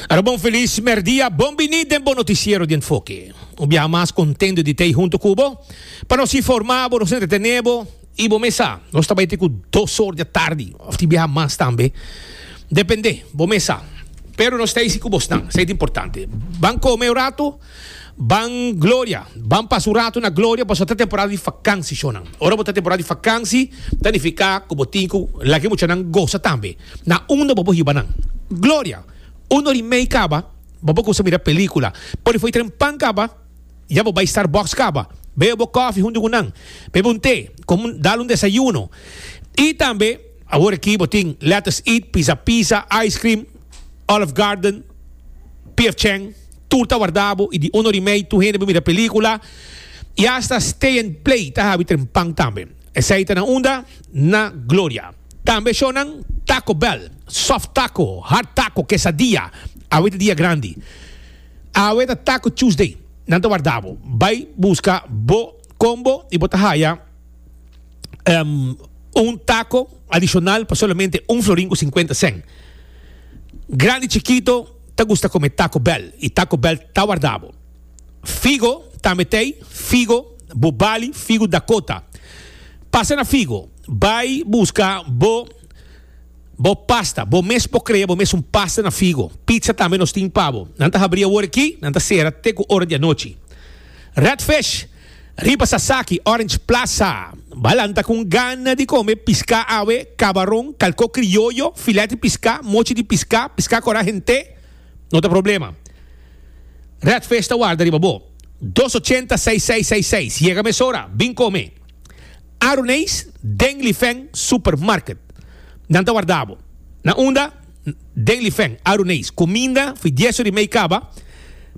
Arabon Feliz Merdia, bon bini den bo noticiero di Enfoke. Un biaha mas contento di tei hunto cu bo. Pa nos informa bo, nos entretene bo y bo mes sa, nos ta bai te cu dos or di a tardi of tin biaha mas tambe. Depende, bo mes sa. Pero nos ta isi cu bo snan, esei ta importante. Ban come un rato, ban gloria, ban pasa un rato na gloria pasobra ta temporada di vakansi, shownan. Ora bo ta temporada di vakansi, ta nifica cu bo tin cu lak e muchanan goza tambe. Na unda bo por hiba nan? Gloria, Un or i mei kaba, bo por kumsa mira pelíkula. Por di fo'i tren pan kaba, ya bo bai Starbucks kaba. Bebe bo kòfi huntu ku nan. Bebe un te, kom un dal un desayuno. I tambe, awor aki bo tin Let Us Eat, Pizza Pizza, Ice Cream, Olive Garden, PF Chang. Tur ta warda bo i di un or i mei tur hende bo mira pelíkula. I asta Stay and Play ta habi tren pan tambe. Esei ta na unda? Na Gloria. Tambe shownan Taco Bell, Soft Taco, Hard Taco, Quesadilla. Awe ta dia grandi. Awe ta Taco Tuesday. Nan ta warda bo. Bai buska bo combo y bo ta haya em, un taco adicional pa solamente un florin cu cincuenta cent. Grandi chikito ta gusta come Taco Bell y Taco Bell ta warda bo. Figo, Tametei, figo, bo bali, figo Dakota. Pasa na figo, bai buska bo bo pasta, bo mes por crea bo mes un pasta na figo. Pizza tambe nos tin pa bo. Nan ta habri awor aki, nan ta cera te cu ora di anochi. Red Fish, riba Sasaki, Orange Plaza. Ba lanta con gana di come pisca awe, cabaron, calco crioyo, filet di pisca, mochi di pisca, pisca cora hente. No ta problema. Redfish ta warda riba bo. Dos ochenta seis seis seis seis. Yega mesora, bin kome. Aruneis den Lifeng Supermarket. Nan ta warda bo. Na unda? Den Lifeng, Aruneis. Kuminda fi dies ur i mei kaba.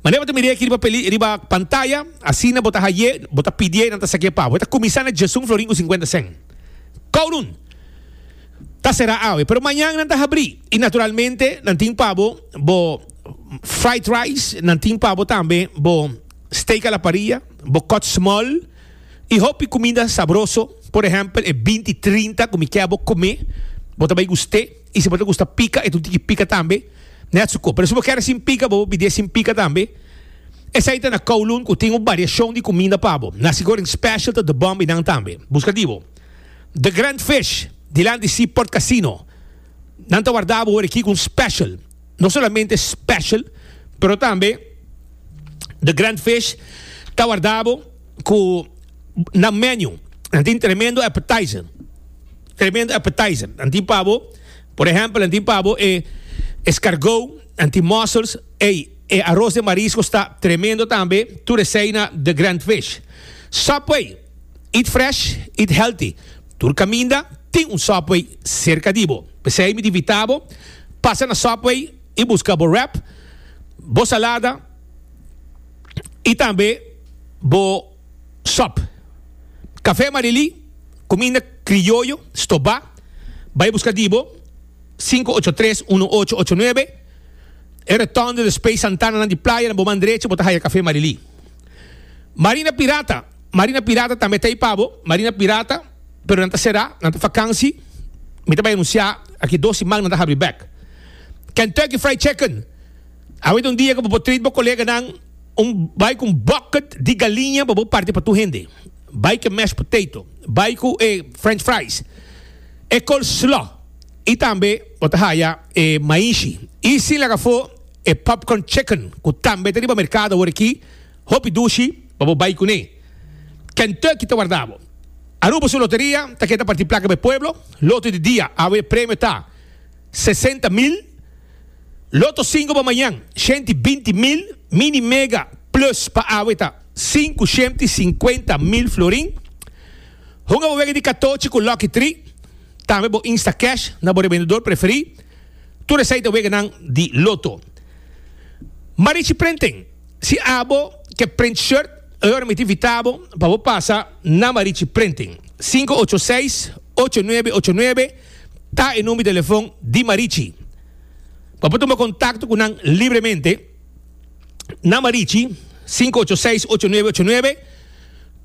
Manera bo ta mira e aki riba pantaya, asina bo ta haye, bo ta pidié i nan ta sakié pa bo. E ta kuminsá na Djesun Florin ku sinkuenta sen. Kowloon! ta será awe, pero mañan nan ta habrí. I naturalmente nan tin pa bo bo fried rice, nan tin pa bo tambe bo steak a la parrilla, bo kòt smòl i hopi kuminda sabroso. Por ehèmpel e binti trinta ku mi kè bo kume, bo ta bai gust'é. I si bo ta gusta pika, e ta un tiki pika tambe, nèt su kò. Pero si bo kèr sin pika, bo por pidié sin pika tambe. Esei ta na Kowloon ku tin un bariashon di kuminda pa bo. Na Sigourney Special ta The Bomb i nan tambe. Buska di bo. The Grand Fish, dilanti Seaport Casino. Nan ta warda bo worikico un special. No solamente special, pero tambe The Grand Fish ta warda bo cu nan menu. Nan tin tremendo appetizer. Tremendo appetizer. Nan tin pa bo, por ejemplo, nan tin pa bo e escargot, nan tin mussels. Ey, e arroz de marisco sta tremendo tambe. Tur esey na The Grand Fish. Subway. Eat fresh, eat healthy. Tur kaminda tin un Subway serka di bo. P'esei mi ta invita bo pasa na Subway i buska bo wrap, bo salada i tambe bo sòp. Café Marily, kuminda krioyo stobá, bai buska di bo, sinku ocho tres uno ocho ocho nuebe, e Rotonde Space Santananan di Playanan bo man drecha bo ta haya Café Marily. Marina Pirata. Marina Pirata tambe ta ipa bo. Marina Pirata, pero nan ta será, nan ta vakansi. Mi ta bai anunciá aki dos siman nan ta habri bek. Kentucky Fried Chicken, awe ta un dia ku bo por treat bo koleganan un bai ku un bucket di galiña pa bo parti pa tur hende. Bai ku e mashed potato, bai ku e french fries, e coleslaw i tambe bo ta haya e maishi. I sin laga afó e popcorn chicken ku tambe ta riba merkado awor aki. Hopi dushi pa bo bai kuné. Kentucky ta warda bo. Aruba su loteria ta keda parti plaka be pueblo, loto di dia awe e premio ta sesenta mil, loto sinku pa mañan shenti binti mil, mini mega plus pa awe ta sinku shenti sinkuenta mil florin. Hunga bo wega di katochi ku lucky tri, tambe bo insta cash na bo rebendedor preferí. Tur esei ta weganan di loto. Marichi Prenten. Si abo ke print shirt, e ora mi ta invita bo pa bo pasa na Marichi Printing. Sinku ocho seis, ocho nuebe ocho nuebe ta e number di telefon di Marichi. Bo por tuma kontakto ku nan libremente na Marichi, sinku ocho seis, ocho nuebe ocho nuebe.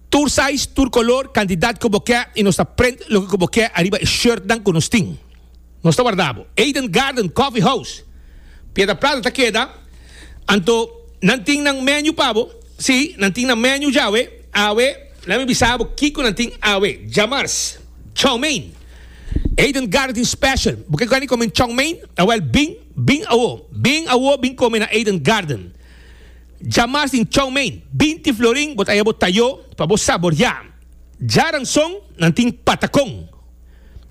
Tur size, tur kolor, kantidat ku bo ke i nos ta print loke ku bo ke ariba e shirtnan ku nos tin. Nos ta warda bo. Eden Garden Coffee House, Piedra Plata ta keda, anto nan tin nan menu pa bo? Si, nan tin nan menu djawe. Awe, lami bisa bo kiko nan tin awe, djamars, chow mein. Eden Garden tin special, bo ke gani kome chow mein? Awel bin, bin awo, bin awo bin kome na Eden Garden. Djamars tin chow mein, binti florin bo ta haya bo tayo pa bo saboria. Djaranson nan tin patacon.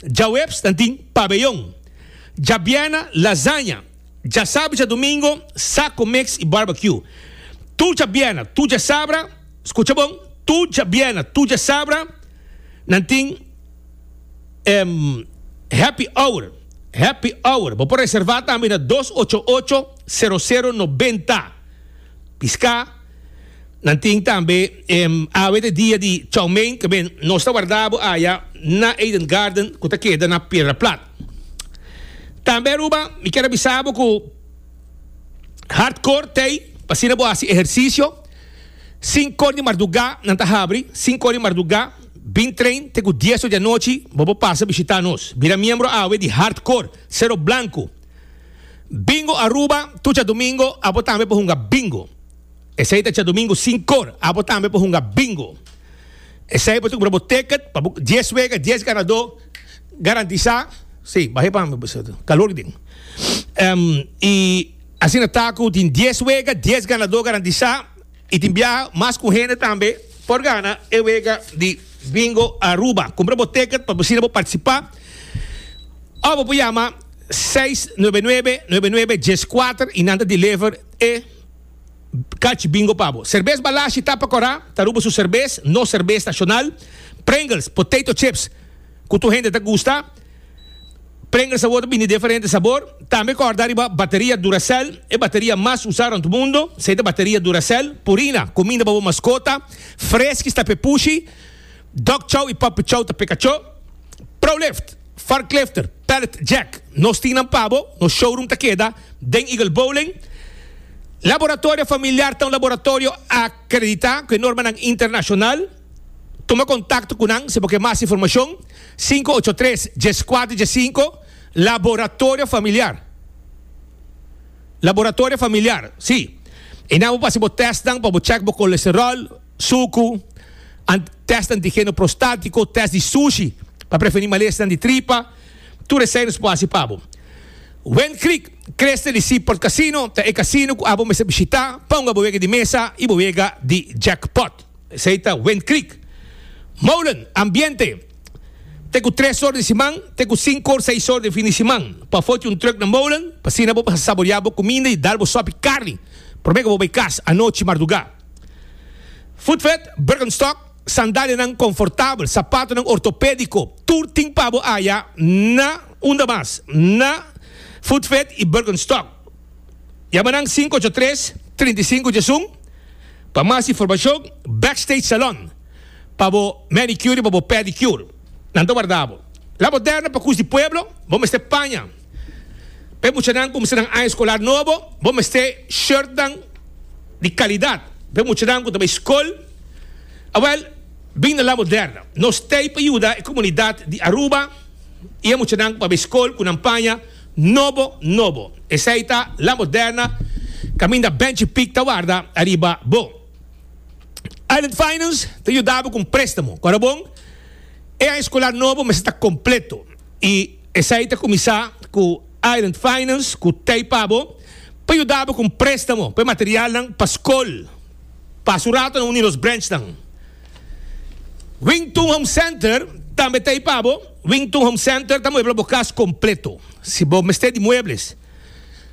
Djaweps nan tin pabeyon, djabièrna lasaña, djasabra i djadumingo sako mix i barbecue. Tur djabièrna, tur djasabra, skucha bon, tur djabièrna, tur djasabra nan tin happy hour, happy hour. Bo por reservá tambe na dos ocho ocho, sero sero nobenta. Piská. Nan tin tambe e awe de dia di chow mein ke men nos ta wardá bo aya na Eden Garden ku ta keda na Piedra Plat. Tambe Aruba mi kier a bisa bo ku Hard Core t'ei pa asina bo hasi ehersisio. Sinku or di mardugá nan ta habri, sinku or di mardugá bin train te ku dies or di anochi bo por pasa bishitá nos. Bira miembro awe di Hard Core, Sero Blanku. Bingo Aruba, Tu Tjadomingo, abo tambe por hunga bingo. Esei ta Tjadomingo sin kor, abo tambe por hunga bingo. Esei bo ta kumpra bo ticket pa bo dies wega, dies ganadó garantisa. Sí, bahe pa mi pues, kalor ki tin. Em, i asina ta ku tin dies wega, dies ganadó garantisa. Y tin biaha mas cu hende tambe por gana e wega di Bingo Aruba. Cumpra bo ticket pa bo asina bo participa. Of bo por yama seis nuebe nuebe nuebe nuebe dies cuater y nan ta deliver e catch bingo pa bo. Cervez Balashi ta pa cora, ta Aruba su cervez, nos cervez nacional, Pringles, potato chips cu tur hende ta gusta. Prenga sabor ta bini deferente sabor. Tambe corda riba bateria Duracell, e bateria mas usa rond mundo, esey ta bateria Duracell. Purina, cuminda pa bo mascota. Friskies ta pepushi. Dog chow y puppy chow ta pekacho. Prolift, forklifter, pallet jack, nos tin nan pa bo. Nos showroom ta keda den Eagle Bowling. Laboratorio Familiar ta un laboratorio acredita cu e normanan internacional. Tuma kontakto ku nan si bo ke mas informashon, sinku ocho tres, dies kuater dies sinku, Laboratorio Familiar, Laboratorio Familiar, si. E nan bo pa hasi bo tèstnan pa bo chèk bo kolesteròl, suku, an, tèst antigeno prostátiko, tèst di sushi pa prevení malesnan di tripa, tur esei nos por hasi pa bo. Wind Creek, Creste di Seaport Casino, ta e kasino ku abo mester bishitá pa un abo wega di mesa i bo wega di jackpot. Esei ta Wind Creek. Molen, Ambiente, Te ku tres or di siman te ku sinku or seis or di fin di siman pafó tin un truk na Molen pa asina bo mester saboreá bo kuminda i dal bo sòpi karni promé ku bo bai kas anochi mardugá. Footvet, Birkenstock, Sandalianan konfortabel, sapatonan ortopédiko, tur tin pa bo aya na unda mas na Footvet i Birkenstock. Yama nan sinku ocho tres, trinta i sinku djesun pa mas informashon Backstage Salon pa bo manicure i pa bo pedicure. Nan ta warda bo. La Moderna pa Cus di Pueblo bo mester paña pa e muchanan ku kumsa nan aña eskolar nobo, bo mester shirtnan di kalidat. Pa e muchanan ku ta bai skol, awèl bin na La Moderna. Nos t'ei pa yuda e komunidat di Aruba i e muchanan ku pa bai skol ku nan paña. Nobo nobo. Esei ta La Moderna kaminda Benchi Pic ta warda ariba bo. Island Finance ta yuda bo ku un prestamo ku ara bon. E aña skolar nobo mester ta kompleto i esei ta kuminsá ku Island Finance ku tei pa bo pa yuda bo ku un prestamo pa e materialnan pa skol. Pasa un ratonan uni nos branchnan. Wington Home Center tambe ta ei pa bo. Wington Home Center ta muebla bo cas completo. Si bo mester di muebles,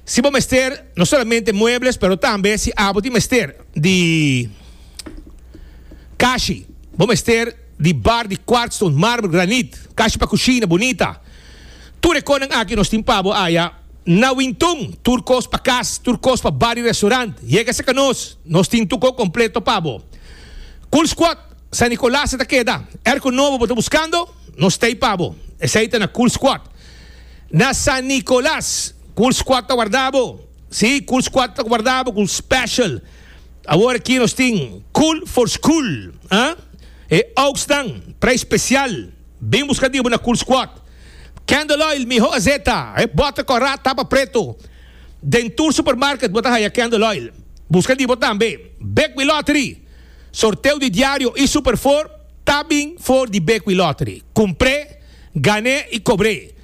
si bo mester no solamente muebles, pero tambe si abo tin mester di cashi, bo mester di bar di quartzstone, marmer, granit, cashi pa cushina bonita. Tur e konan aki nos tin pa bo aya, na Wintun, tur kos pa kas, tur kos pa bar i restaurant. Yega serka nos, nos tin tuko kompleto pa bo. Cool Squad, San Nicolas e ta keda. Erko nobo bo ta buskando? Nos t'ei pa bo. Esei ta na Cool Squad. Na San Nicolas, Cool Squad ta warda bo. Sí, Cool Squad ta warda bo ku special. Awor aki nos tin Cool for School, ah? E ouksnan, preis special. Bin buska dibu na Kulsquat. Candle oil miho a zeta. E bottle kora tapa pretu. Den tur supermarket bo ta haya candle oil. Buska dibo tambe. Bekwin Lottery. Sorteo di diario y Super Four ta bin for di Bekwin Lottery. Kumpré, gané y kobré.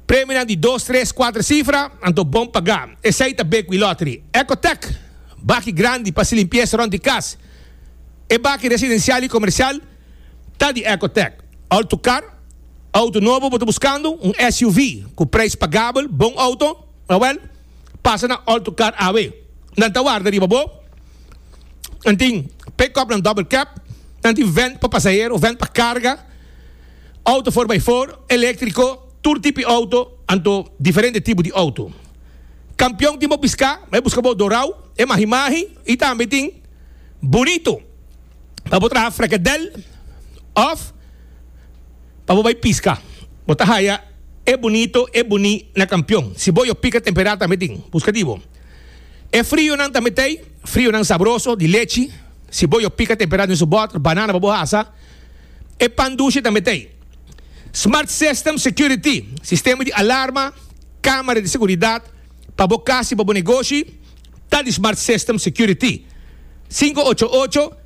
Premionan di dos, tres, kuater sifra, anto bon pagá. Esei ta Bekwin Lottery. Ecotec. Baki grandi pa haci limpieza rond di cas. E baki residencial y comercial. ta di Ecotec. Alto car, auto nobo bo ta buscando? Un SUV cu prijs pagabel, bon auto? Awel, pasa na Alto Car awe. Nan ta warda riba bo. Nan tin pick-upnan double cab, nan tin vent pa pasahero, vent pa carga, auto four by four, electrico, tur tipi auto, anto diferente tipo di auto. Campeon tin bo pisca, ma e busca bo dorao, e mahi mahi y tambe tin bunito. pa bo traha frekedel of pa bo bai piska. Bo ta haya e bunito, e buni na kampion. Si bo yo pika temperá tambe tin, buska di bo. E frionan tambe t'ei, frionan sabroso di lechi, si bo yo pika temperá den su bòter, banana pa bo hasa. E pan dushi tambe t'ei. Smart System Security, sistema di alarma, kamera di seguridat, pa bo kas i pa bo negoshi. ta di Smart System Security. Sinku ocho ocho,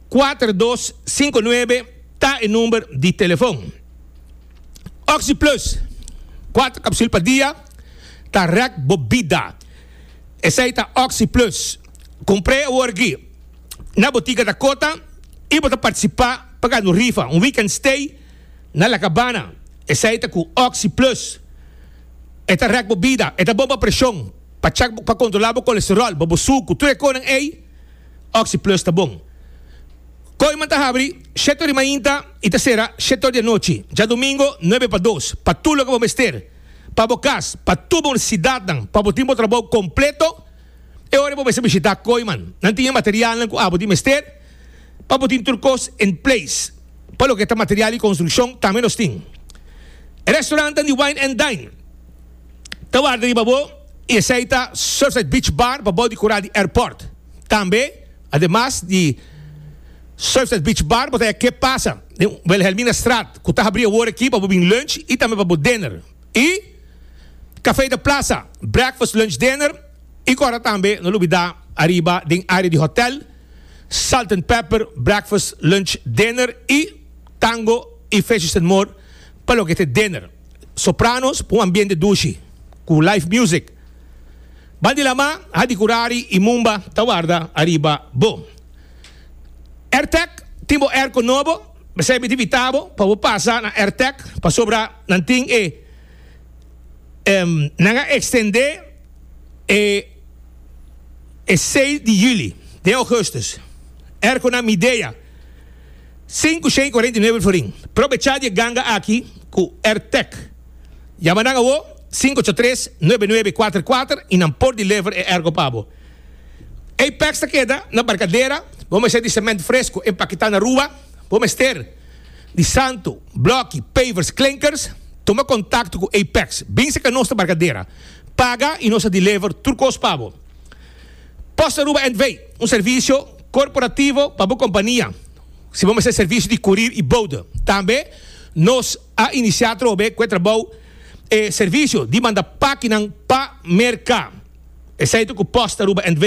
kuater dos sinku nuebe ta e number di telefon. Oxi Plus, kuater kapsul pa dia, ta rèk bo bida. Esei ta Oxi Plus. Kumpr'é awor gí na botika Dakota i bo ta partisipá pa gana un rifa, un weekend stay na La Cabana. Esei ta ku Oxi Plus. E ta rèk bo bida. E ta bon pa preshon. Pa chak bo, pa kontrolá bo kolesteròl, bo bo suku, tur e konan ei, Oxi Plus ta bon. Kooiman ta habri shèt ori mainta i ta sera shèt ori di anochi, djadumingo nuebe pa dos, pa tur loke bo mester, pa bo kas, pa tur bo nesesidatnan, pa bo tin bo trabou kompleto. E ora bo mester bishitá Kooiman, nan tin e materialnan ku abo tin mester pa bo tin tur kos en place. Pa loke ta material di construccion tambe nos tin. E restaurantan di Wine and Dine ta warda riba bo y esey ta Surfside Beach Bar pa bou di cura di airport. Tambe, ademas di Surfside Beach Bar bo ta haya ke pasa den Wilhelminastraat cu ta habri awor aki pa bo bin lunch y tambe pa bo dinner. Y Café de Plaza, breakfast, lunch, dinner. I kòrda tambe no lo bidá ariba den área di hotèl, Salt and Pepper, Breakfast, Lunch, Dinner i Tango i Fishes and More pa loke ta e Dinner. Sopranos pa un ambiente dushi ku live music. Bandilama, hadikurari i mumba ta warda ariba bo. Airtec tin bo airco nobo, p'esei mi ta invitá bo pa bo pasa na Airtec pasobra nan tin e. Nan a extendé e e seis di juli den augustus. Erco na Midea, sinku shen cuarenta y nuebe florin. Probechá di e ganga aki cu Ertec. Yama nan awo sinku ocho tres, nuebe nuebe kuater kuater y nan por deliver e erco pa bo. Apex ta keda na Barcadera, bo mester di cement fresco, empaquetá na Rua, bo mester. di santu, bloki, pavers, klinkers, tuma kontakto ku Apex, bin saka nos ta barkadera, paga i nos ta deliver tur kos pa bo. Post Aruba NV, un servisio korporativo pa bo kompania, si bo mester servisio di kurir i boude. Tambe nos a inisiá atrobe ku e trabou e servisio di manda pakinan pa merka. Esei ta ku Post Aruba NV.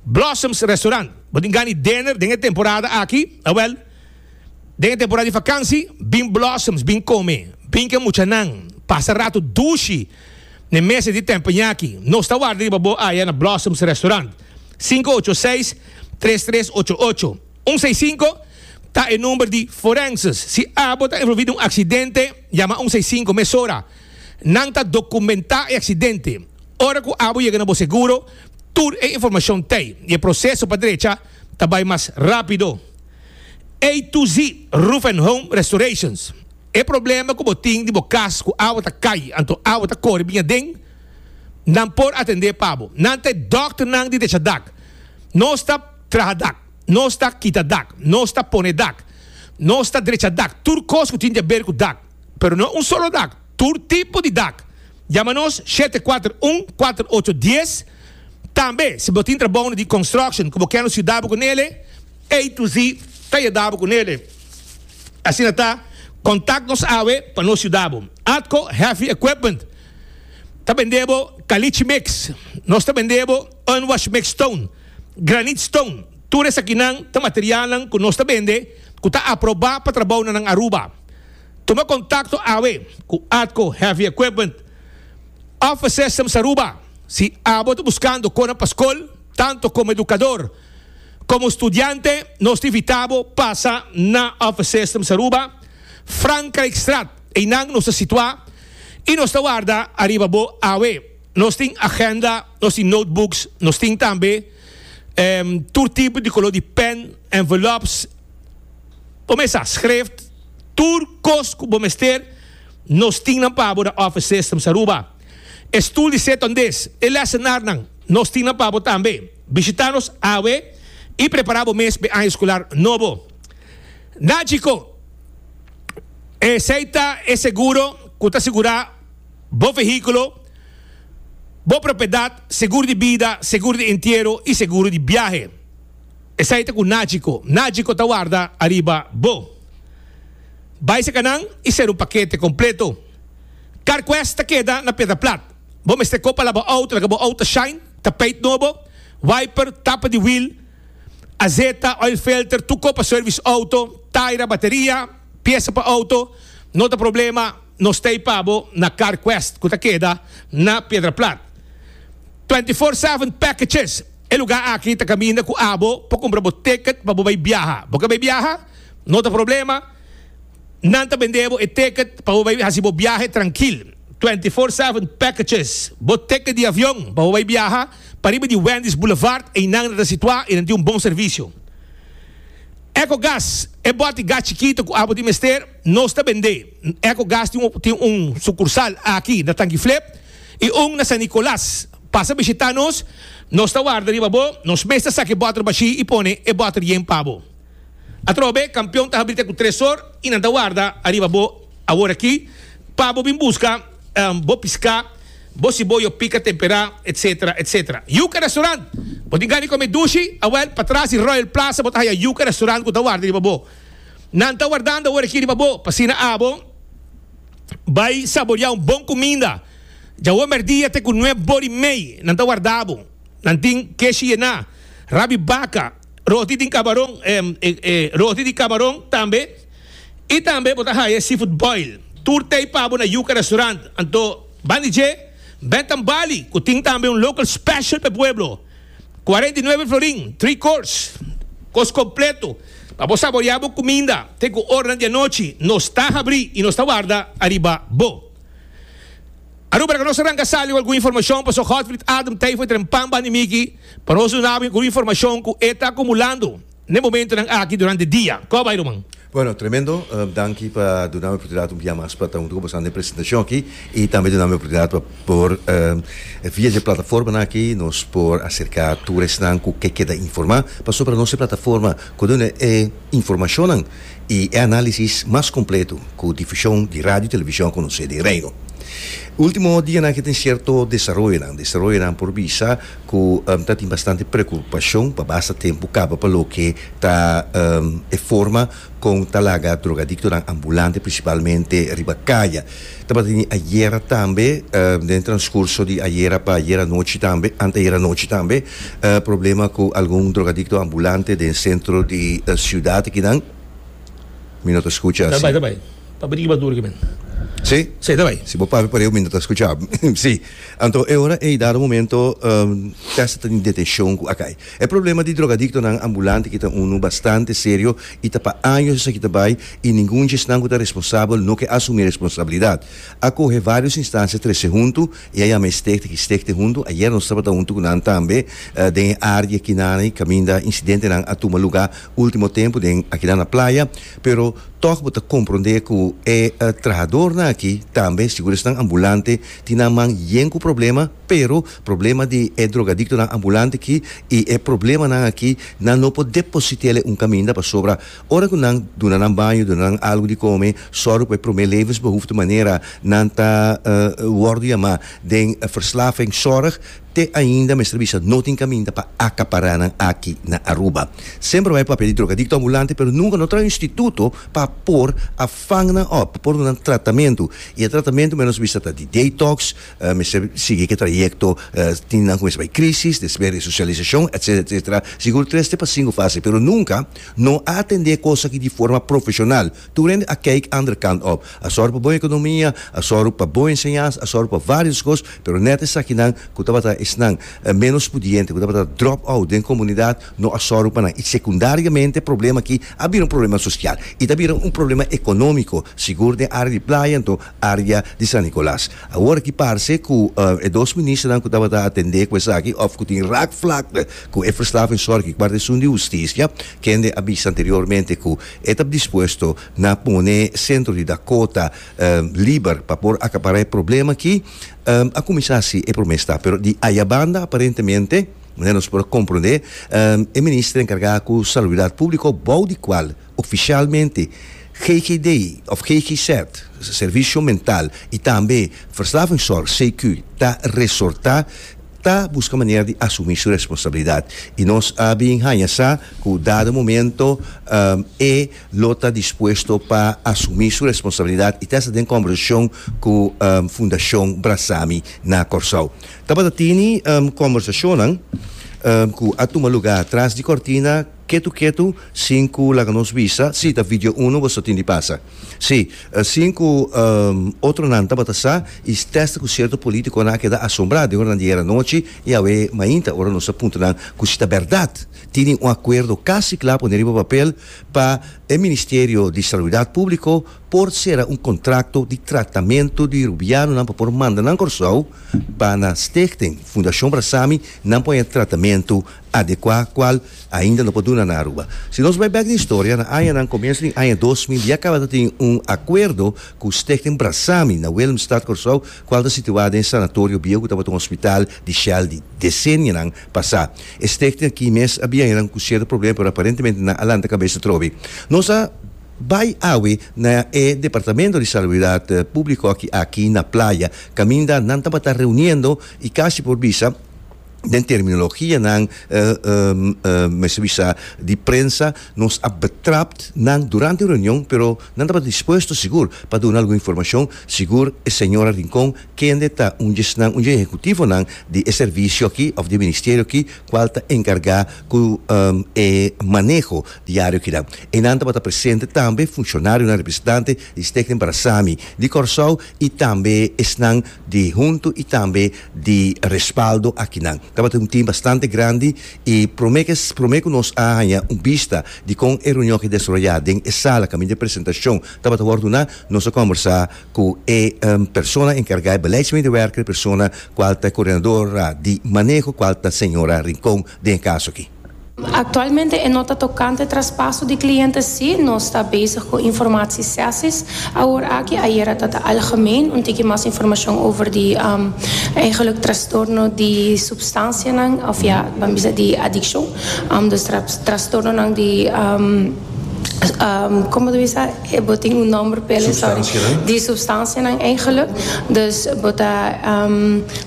Blossoms Restaurant, bo tin gani dener den e temporada aki? Awèl. Den e temporada di fakansi bin blossoms bin kome bin ke muchanan pasa ratu dushi n'e meses di tempo ñaki. Nos ta warda riba bo aya na Blossoms Restaurant. Sinku ocho seis, tres tres ocho ocho, un seis sinku ta e number di Forenses. Si abo ta envolvi den un aksidente, yama un seis sinku mesora. Nan ta dokumentá e aksidente. Ora ku abo yega na bo seguro, tur e informashon t'ei i e proseso pa drecha. ta bai mas rápido. A to Z Roof and Home Restorations, E problema ku bo tin di bo kas ku awa ta kai anto awa ta kore biña den, nan por atendé pa bo. Nan ta e dòkternan di techa dak. Nos ta traha dak, nos ta kita dak, nos ta pone dak, nos ta drecha dak, tur kos ku tin di haber ku dak, pero no un solo dak. tur tipo di dak. Yama nos shete kuater un kuater ocho dies. Tambe si bo tin trabounan di construction ku bo ken nos yuda bo ku nele, A to Z ta yuda bo ku nele. Asina ta, kontak nos awe pa nos yuda bo. Atco Heavy Equipment ta bende bo kalichi mix, nos ta bende bo unwashed mix stone, granite stone, tur esakinan ta materialnan ku nos ta bende ku ta aproba pa trabounan nan Aruba. Tuma kontakto awe ku ATCO Heavy Equipment Office Systems Aruba si abo ta buskando kona pa skol. Tanto komo edukador komo studiante nos ta invitabo pasa na Office Systems Aruba, Frankrijkstraat, einan nos ta situá i nos ta warda ariba bo awe. Nos tin agenda, nos tin notebooks, nos tin tambe tur tipo di koló di pèn, envelopes, Bo mester schref tur cos cu bo mester. Nos tin nan pa abo na office system Saruba. E stoel di set on this, e lessenarnan, nos tin nan pa abo tambe. Bishita nos awe y prepara bo mes p'e aña escolar nobo. Na chico, esey ta e seguro cu ta segura bo vehiculo, bo propiedad, seguro di bida, seguro di entiero y seguro di biahe. Esai ta ku Nachiko. Nachiko ta warda ariba bo. Bai saka nan i ser un pakete kompleto. Carquest ta keda na Piedra Plat. Bo mester kopa la bo auto laga bo auto shine, tapeit nobo, wiper, tapa di wiel, azeta, oil filter, tur kopa service auto, taira, bateria, piesa pa auto. No ta problema, nos ta ipa bo na Carquest ku ta keda na Piedra Plat. Twenty four seven packages. E lugá aki ta kaminda ku abo pa kumpra bo tèkèt pa bo bai biaha. Bo ke bai biaha? No ta problema, nan ta bendé bo e tèkèt pa bo bai hasi bo biahe trankil. Twenty Four Seven Packages, Bo tèkèt di avion pa bo bai biaha pa riba di Wendy's Boulevard, einan nan ta situá i nan tin un bon servisio. Ecogas, E bòt gas chikitu ku abo tin mester, nos ta bendé. Ecogas tin tin un sukursal aki na Tangi Flip. I un na San Nicolas. Pasa bishita nos, nos ta warda riba bo, nos mes ta saki bòter bashí i pone e bòter yen pa bo. Atrobe, kampion ta habri te ku tresor i nan ta warda ariba bo aworakí pa bo bin buska bo piská, bo siboyo pika temperá, etsetera, etsetera. Yuka Restaurant! Bo tin gana di kome dushi? Awèl, patras di Royal Plaza bo ta haya Yuka Restaurant ku ta warda riba bo. Nan ta wardando aworakí riba bo, pa asina abo. Bai saboria un bon cuminda. Dja hopi merdia te cu nueb bor y mey nan ta warda bo. Nan tin keshi yena, rabi baca, roti tin cabaron, roti di cabaron tambe. Y tambe bo ta haya e seafood boil. Tur tey pa bo na Yuca Restaurant. Anto, bandi dje, Bentham Barley, cu tin tambe un local special pa e pueblo. Cuarenta y nuebe florin, three course, cos completo pa bo saborea bo cuminda te cu oranan di anochi nos ta habri y nos ta warda ariba bo. Aruba ta cu nos arranca sali cu algun informacion pasobra Godfried Adam Tijfo e tren pan bandi miki pa nos duna bo algun informacion cu e ta acumulando. N'e momentonan aki durante dia. Kò bai ruman? Bueno, tremendo. Danki pa dunami oportunidad un bia mas pa ta huntu ku boso na e presentacion aki i tambe dunami oportunidad pa por via dje plataformanan aki nos por acerca tur esnan ku ke keda informa pasobra nos e plataforma ku duna e informacionnan i e analisis mas completo ku difusion di radio i television conoce den Reino. Ultimo dianan aki tin cierto desaroyonan, desaroyonan por bisa ku ta tin bastante preokupashon pa basta tempu kaba pa loke ta e forma kon ta laga drogadiktonan ambulante prinsipalmente riba kaya. Tabata di ayera tambe, den transkurso di ayera pa ayera anochi tambe, anteayera anochi tambe, problema ku algun drogadikto ambulante den sentro di siudat akinan. Mi no ta skucha asi? Papia di ki bo a tur aki men? Sí. Sí, ta bai. Si bo papia pare, mi no ta skucha. Sí. Anto e ora ei dado momento Tessa ta den detenshon ku Akai. E problema di drogadiktonan ambulante aki ta unu bastante serio i ta pa años esaki ta bai i ningun djesnan ku ta responsabel no ke asumí responsabilidat. A kohe vários instansia trese huntu i a yama e Stichting i Stichting huntu ayer nos tabata huntu ku nan tambe den e área di aki nan i kaminda incidentenan a tuma lugá último tempu den akinan na playa. Pero tòg bo ta komprondé ku e trahadornan aki tambe, sigur esnan ambulante, tin nan man yen ku problema, pero problema di e drogadiktonan ambulante aki i e problemanan aki nan no por deposit'é el e un kaminda, pasobra ora ku nan duna nan baño, duna nan algu di kome, sòru pa e promé levensbehoefte manera nan ta wòrdu yamá den verslavingzorg, te ainda mester bisa no tin kaminda pa akapará nan aki na Aruba. Semper bai papia di drogadikto ambulante pero nunka no traha un instituto pa por a vang nan op, por duna nan tratamentu. I e tratamentu menos bisa ta di detox, mester sigui ke trayekto tin nan ku mester bai krisis, despues resosialisashon, etsetera, etsetera. Sigur tres te pa sinku fase pero nunka no a atendé kos aki di forma profeshonal, Tur hende a kijk ander kant op. A sòru pa bon ekonomia, a sòru pa bon enseñansa, a sòru pa vários kos, pero nèt esakinan ku tabata esnan ménos pudiente, ku tabata drop out den komunidat, no a sòru pa nan. I sekundariamente e problema akí a bira un problema sosial i ta bira un problema ekonómiko, sigur den área di playa anto área di San Nicolas. Awor akí parse ku e dos ministernan ku tabata atendé ku esaki òf ku tin raakvlakte ku e verslavingzorg i Guardia Esun di Hustisia, kende a bisa anteriormente ku E ta dispuesto na pone Sentro di Dakota liber pa por acabará e problema aki. A cuminsa haci e prome stap, pero di ayabanda aparentemente, manera nos por a comprende, e Minister encarga cu Salubridad Publico, bou di cual oficialmente GGD of GGZ, Servicio Mental y tambe Verslavingszorg, CQ, ta resorta, ta busca manera di asumi su responsabilidad y nos a bin hanja sa cu dado momento e lo ta dispuesto pa asumi su responsabilidad y ta esta den conversacion cu Fundacion Brazami na Corsou. Tabata tini conversacionnan cu a tuma lugar tras di cortina ketu ketu sin cu laga nos bisa si ta video uno boso tin di pasa. Sí, sin cu otronan tabata sa y stesta cu cierto politiconan a keda asombrá den oranan di ayer anochi y awe mainta ora nos ta punta nan cu si ta berdad tini un acuerdo casi cla pone riba papel pa e Ministerio di Salubridad Publico por cera un contracto di tratamento di Rubianonan pa por manda nan Corsou pa na Stichting Fundacion Brasami nan por haña tratamento adecuá cual ainda no por duna na Aruba. Si nos bai bek di historia, na añanan comienso di aña dos mil ya caba ta tin un acuerdo cu Stichting Brasami na Willemstad, Corsou, cual ta situá den Sanatorio Bieu cu tabata un hospital di Shell di decenianan pasá. E stichting aki mes a bin añanan cu cierto problema pero aparentemente nan a lanta cabes atrobe. Nos a bai awe na e Departamento di Salubridad Publico aki aki na Playa caminda nan tabata reuniendo y casi por bisa, den terminologianan mester bisa di prensa nos a betrapt nan durante e reunion pero nan tabata dispuesto sigur pa duna algun informashon sigur e señora Rincon kende ta un dje esnan un dje ehekutivonan di e servisio aki òf di e ministerio aki kual ta enkargá ku e maneho diario kinan einan tabata presente tambe funshonarionan representante di Stichting Barasami di Kòrsou i tambe esnan di huntu i tambe di respaldo akinan. Tabata un team bastante grandi y prome que prome cu nos a haña un bista di con e reunion a desaroya den e sala caminda e presentacion tabata wor duna, nos a combersa cu e persona encarga e beleidsmedewerker, e persona cual ta e coordinadora di maneho cual ta señora Rincon den e caso aki. Aktualmente e nota tokante traspaso di kliente si nos ta bezig ku informatie sesis awor aki, ayera ta ta algemeen, un tiki mas informashon over di eigenlik trastorno di supstansianan of ya nan bisa di adikshon, dus trastornonan di, como ta bisa? E bo tin un nomber pa el e sorry. Substancianan. Di substancianan eigenlijk. Dus bo ta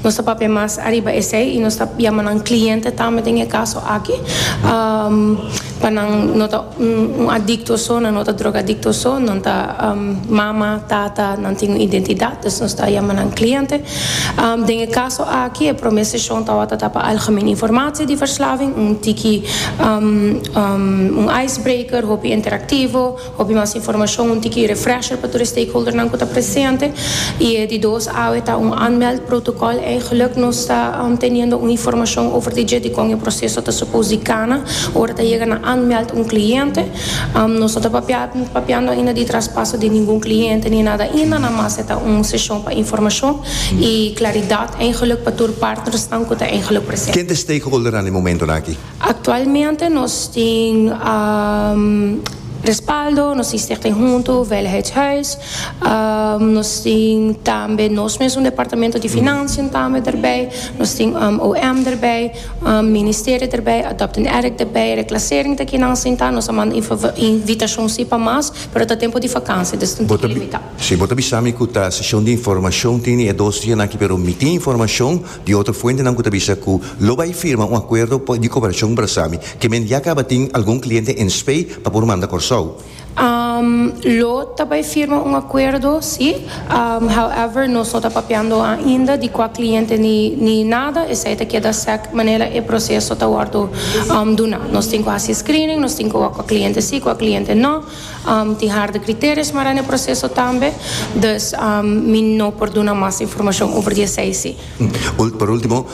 nos ta papia mas ariba esey y nos ta yama nan cliente tambe den e caso aki pa nan no ta un adicto so nan no ta drogadicto so nan ta mama tata nan tin un identidad dus nos ta yama nan cliente den e caso aki e prome sesion tawata ta pa algemene informatie di verslaving un tiki un icebreaker hopi interactivo. Hopi mas informashon, un tiki refresher pa tur e stakeholdernan ku ta presente, i e di dos awe ta un aanmeld protokòl. Eigenlik nos ta teniendo un informashon over di dje dikon e proseso ta supos di kana ora ta yega na aanmeld un kliente. Nos no ta papiando ainda di traspaso di ningun kliente ni nada ainda, namas e ta un seshon pa informashon i klaridat, eigenlik pa tur partnersnan ku ta eigenlik presente. Ken ta e stakeholdernan den momentunan aki? Aktualmente nos tin respaldo, nos tin Stichting Huntu Veiligheidshuis, nos tin tambe nos mes un departamento di financiën tambe derbij, nos tin OM derbij, ministerio derbij, Adopt an Addict derbij, Reclassering ta kinan sinta, nos a manda invitashon si pa mas, pero ta tempu di vakansia, dus ta un tiki limitá. Si bo ta bisa mi ku ta seshon di informashon, tin e dos dianan aki, pero mi tin informashon. Di otro fuentenan cu ta bisa cu lo bay firma un acuerdo pa di cooperacion Brasami, ke men ya caba tin algun cliente en Spey pa por manda Corsou. Lo ta bay firma un acuerdo, si. However, nos no ta papiando ainda di cua cliente ni nada, esey ta keda sec manera e proceso ta wordo duna. Nos tin cu haci screening, nos tin cu wak cua cliente si, cua cliente no. Tin harde kriterios mara na e proseso tambe, dus mi no por duna mas informashon over di esei si. Pa ultimo,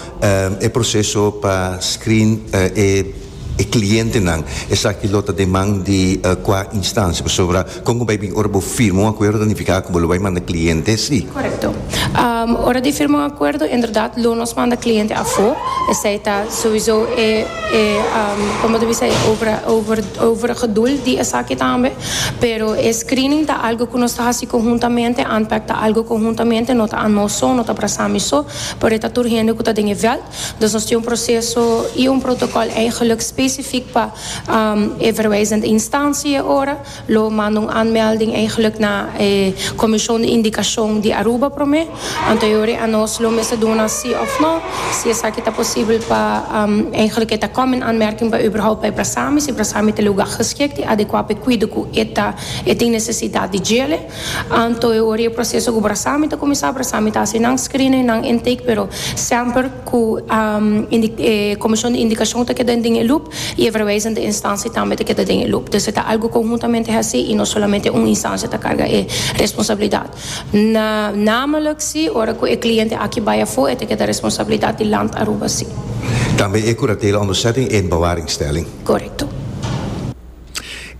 e proseso pa screen e klientenan, esaki lo ta den man di kua instansia? Pasobra kon ku bai bin ora bo firma un akuerdo ta nifiká ku bo lo bai manda kliente si? Korekto. Ora di firma un acuerdo inderdat lo nos manda cliente afo, esey ta souiso e e como ta bisa e over over overige doel di esaki tambe, pero e screening ta algo cu nos ta haci conhuntamente, Antpac ta algo conhuntamente no ta anos so, no ta Brasami so, pero e ta tur hende cu ta den e veld, dus nos tin un proceso y un protocol eigenlijk specifiek pa e verwijzende instantie ora, Lo manda un aanmelding eigenlijk na e Commision di Indicacion di Aruba prome. Anteriori a nos lo mester duna si of no, si esaki ta posibel pa, eigenlijk e ta kom in aanmerking pa uberhoupt pa e brasami, si brasami ta luga geschikt i adecua pa e cuido cu e ta e tin necesidad di djele. Anteriori e proceso cu brasami ta cuminsa, brasami ta haci nan screening, nan intake, pero semper cu e Commision di Indicacion ta keda den e loop. y e verwijzende instantie tambe ta keda den e loop. Dus e ta algo conhuntamente haci y no solamente un instantie ta carga e responsabilidad. Na, namelijk si, ora cu e cliente aki bay afo e ta keda responsabilidad di Land Aruba si. Tambe e curatela onderzetting en bewaringstelling. Correcto.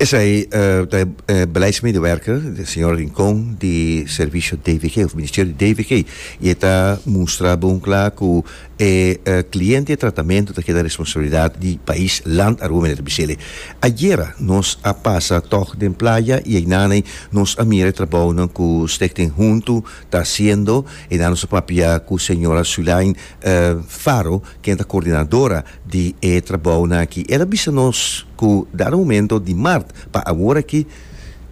Esey ta e beleidsmedewerker, de señor Rincon, di Servicio DVG of Ministerio di DVG y e ta mustra bon cla cu E cliente e tratamento ta keda responsabilidad di pais land Aruba, Minister Bisele. Ayera nos a pasa tog den playa y eynaney nos a mira e trabounan cu Stichting Huntu ta haciendo. Eynan nos a papia cu señora Sulain Faro, ken ta coordinadora di e trabounan aki. El a bisa nos cu dado momento di mart pa awor aki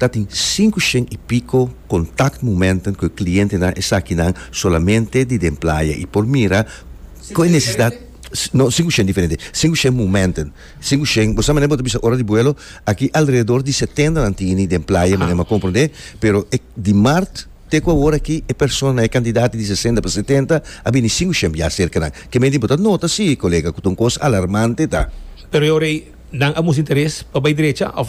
Ta tin sinku shen i piko contact momenten cu e clientenan esakinan solamente di den playa i por mira cu e necesidad no sinku shen diferente sinku shen momenten sinku shen bo sa manera bo ta bisa ora di buelo aki alrededor di setenta nan tini den playa manera bo a comprende pero e di mart te cu awor aki e persona e cantidad di sesenta pa setenta a bini sinku shen bia cerca nan ke mente bo ta nota si colega cu ta un cos alarmante ta. Pero e ora ei nan a musta interes pa bay derecha of.